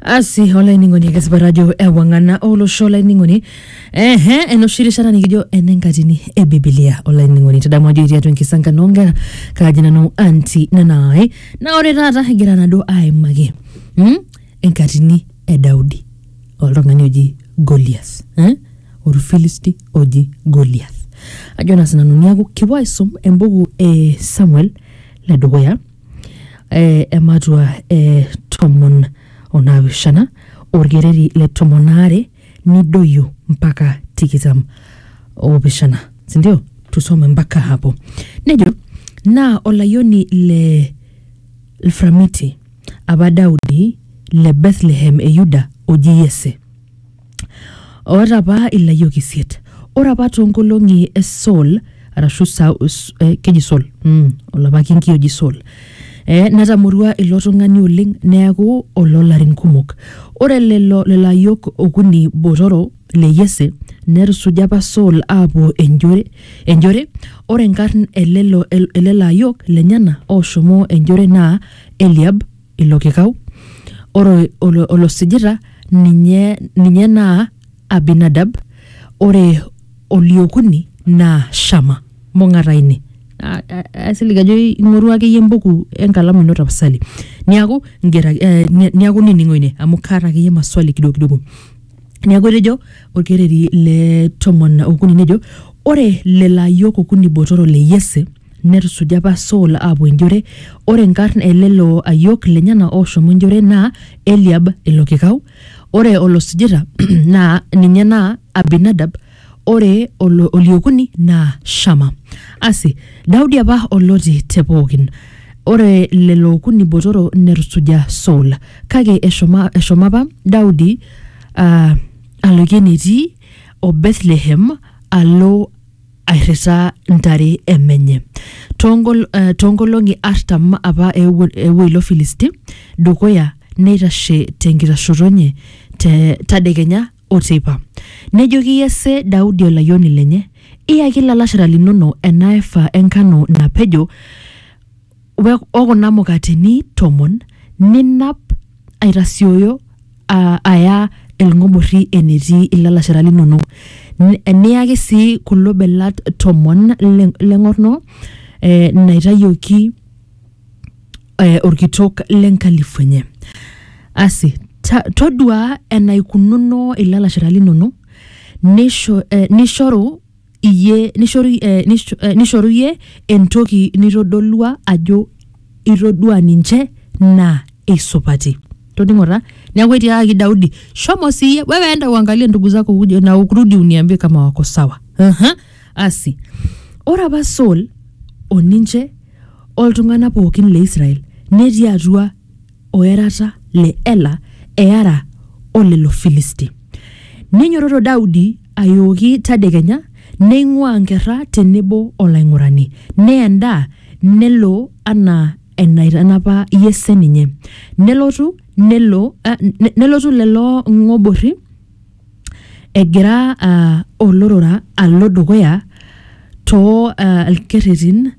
asi olainining'oni ake sipat ajo ewang'ana olosho olainining'oni ehe enoshi rishata nikijo enenkatini e bibilia olainining'oni tadamu ajo etii atua enkisankano onkera kaaji nanu anti nanaai naa ore taata egira nado aimaki mm, enkatini e daudi oltung'ani oji golias eh? orfilisti oji golias ajo naa sinanu niaku kipuo aisum embuku e samuel ledukuya eh, ematua eh, tomon onaapishana orkereri le tomon aare nidoyio mpaka tikitam opishana sindio tusome mpaka hapo nejo naa olayioni le lframiti apa daudi le bethlehem e yuda oji yese oota apa ilayiok isiet ore apa toonkolong'i e Saul arashu Sa- S- eh, keji Saul mm, olapa kinki oji Saul eh, netamorua ilo tung'ani oleng neaku oloolarin kumok ore lelo lelo ayiok okuni botoro le Yese netusuja apa Saul aapuo enjore enjore ore nkarn elelo elelo ayiok lenyena ooshomo enjore naa Eliab ilo kikau ore olo- olosijita ninye ninye naa abinadab ore oliokuni naa shama mong'ata ine A- a- aisilig ajo ing'orua akeyie embuku enkalamu ino tapasali niaku ingera eh, ni- niaku nining'o ine amu kaata akeyie maswali kidogo kidogo neeku etejo olkereri le tomon okuni nejo ore lelo ayiok okuni botoro le yese Netusuja apa Saul aapuo enjore. Ore nkarn e lelo ayiok lenyena ooshomo enjore naa Eliab ilo kikau, ore olosujita naa ninye naa Abinadab, ore olo- oliokuni naa Shama. Asi, Daudi apa oloti te pookin. Ore lelo okuni botoro netusuja Saul. Kake eshomo, eshomo apa Daudi aa aloikie enetii o Bethlehem alo airritaa ntare e menye. Toongol- eh, Toonkolong'i artam apa eewuo eewuo ilo Filisti dukuya neitashe tenkitashoto enye te tadekenya o teipa. Nejoki Yese Daudi olayioni lenye, Iyaki ilalashera linono ena efa enkano napejo we- o kuna mukateni tomon ninap aitasioyo a- aya ilng'oborri enetii ilalashera linonok Ni- niyaki sii kulo belat tomon le- leng'orno eh, naitayioki eh, orkitok lenkalifu enye asi ta- toduaa enaikununo ilalashera linonok nisho, eh, nishoru iyie nishoru, eh, nish, eh, nishoru iyie entoki nitodolua ajo itodua ninche naa eisupati toningo taa neeku etiakaki daudi shomo siiyie wewe enda uangalie ndugu zako uje na ukurudi uniambie kama wako sawa Aha. asi ore apa saul oninche oltung'anak pookin le israel netii atua o erata le Ela eara o lelo Filisti. Neinyototo Daudi ayooki tadekenya, neing'uaa nkerra te nebo o laing'urani, neya endaa, nelo anaa enaitanapa Yese ninye. Nelotu, nelo, ah, ne- nelotu lelo ng'oborri egira ah, olorora alo dukuya too ah, lkerretin